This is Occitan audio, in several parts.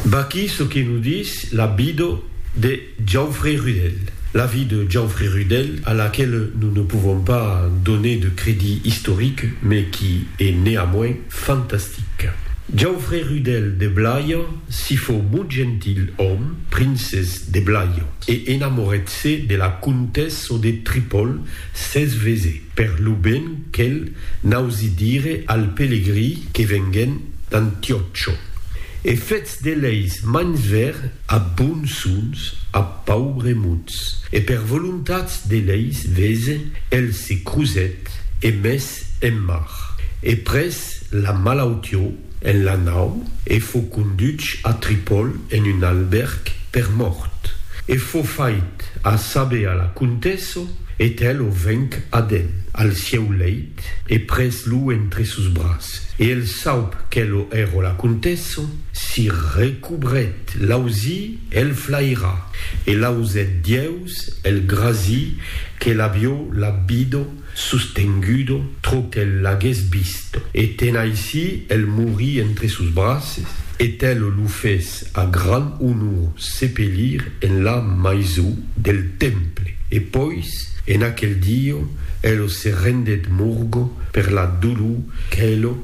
Vaquí çò que nos dis la vida de Jauferré Rudel. La vie de Jauferré Rudel, a laquela nos ne pouvons pas doner de crédit historique, mais qui est néanmoins fantastique. Jauferré Rudel de Blaia si fou mot gentil òme, princès de Blaia, e enamoret-se de la comtessa de Tripòl, Cesvese. Per lo ben quel n'ausi dire al pelegrí que venguèn d'Antiòcho, e fetz de leis mans ver a bonsons a paubres mots, e per volontats de leis vese el se crusèt e mes en mar, e pres la malautió, en la nau e fo conduch a Tripol en un albèrg per mòrt, e fo fait a saber a la contèsso, e tè lo venc ad el, al sieu leit, e pres lo entre sos bras, e el saup que lo ero la contèsso, si recobret l'ausi el flaira, e l'ausèt dieus el grasi que l'avió l'abbido, sostengudo trò qu'el l'agués vist, e ten aicí el morí entre sos braces, e tel lo fes a gran onor sepelir en la maisó del temple, e pois en aquel dieu el se rendèt morgo per la dolor qu'el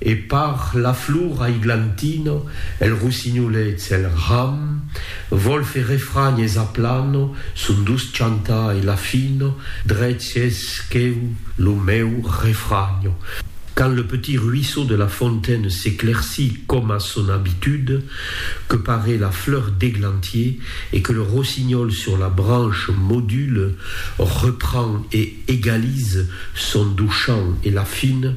E par la flor aiglantina, el rossinholet s'el ram, vòl fer refranh es aplano son doç chantar e l'afino, drech es queu lo meu refranho. Quand le petit ruisseau de la fontaine s'éclaircit com a son habitude, que parait la fleur d'églantier et que le rossignol sur la branche module, reprend et égalise son doux chant et l'afine,